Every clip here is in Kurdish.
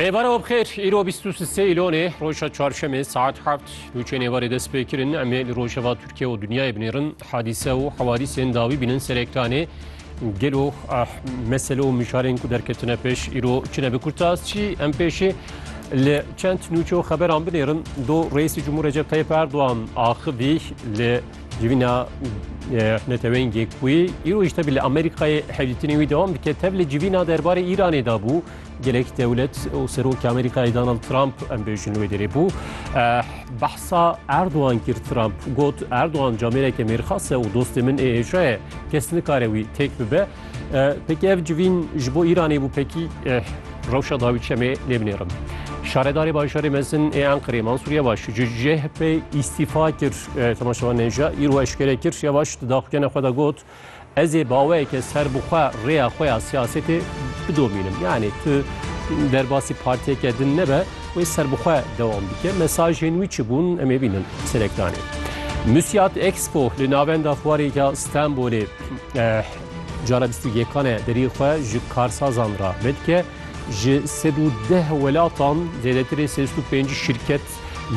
Rêbara Obxêr, îro bîst û sê îlonê roja çarşemê saet heft nûçê nêvarê dest pê kirin em ê li rojeva Tirkiye û dinyayê binêrin hadîse û hewadîsên dawî bînin ser ekranê gelo mesele û mijarên ku derketine pêş îro çi ne bi kurtas çî em pêşî li çend nûçe û xeberan binêrin do Reîsê Cumhur Recep Tayyip Erdogan axivî li Civîna neteweyên Gêkbûyî îro ji tevî li Amerîkayê hevdîtinê wî dewam dike. Tev li civîna derbarê Îranê de bû. Gelek dewlet û Serokê Amerîkayê Donald Trump em bêjin wê derê bû. Eh, behsa Erdogan kir Trump got Erdogan camêreke mêrxas e û dostê min ê êşa ye. Kes nikare wî têk bibe. Pekî ev civîn ji bo Îranê bû pekî rewşa dawî çemê lê binêrim. Şaredarê bajarê mezin ê Enqerê Mansur Yevaş ji CHP îstîfa kir temaşevan nêja îro eşkere kir Yevaş di daxuyana xwe de got ez ê baweyeke ser bi xwe rêya xwe ya siyasetê bidomînim yanê tu derbasî partiyeke din nebe wê ser bi xwe dewam bike mesajên wî çi bûn em ê bînin serekdanê. Müsiyat Expo li navenda fuarê ya Stenbolê Cana bîst û yekan e deriyê xwe ji karsazan re vedike. Ji sed û deh welatan zêdetirê sêst û pênc şîrket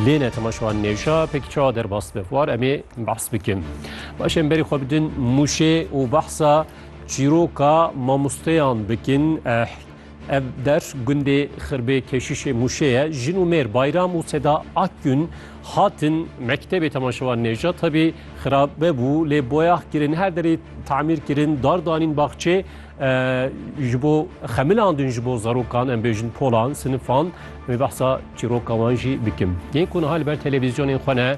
lêne temaşewan nêşa pekî çawa derbas dibe war em ê behs bikin. Baş em berî xwe bidin Mûşê û behsa çîroka mamosteyan bikin. Ev der gundê Xirbê Keşîşê Mûşê ye. Jin û mêr Bayram û Seda Akgün hatin mektebê temaşevan nêja tebî xirabe bû lê boyax kirin her derê tamîr kirin dar danîn baxçê ji bo xemilandin ji bo zarokan em bêjin polan sinifan wê behsa çîroka wan jî bikim. Yên ku niha li ber televîzyonên xwe ne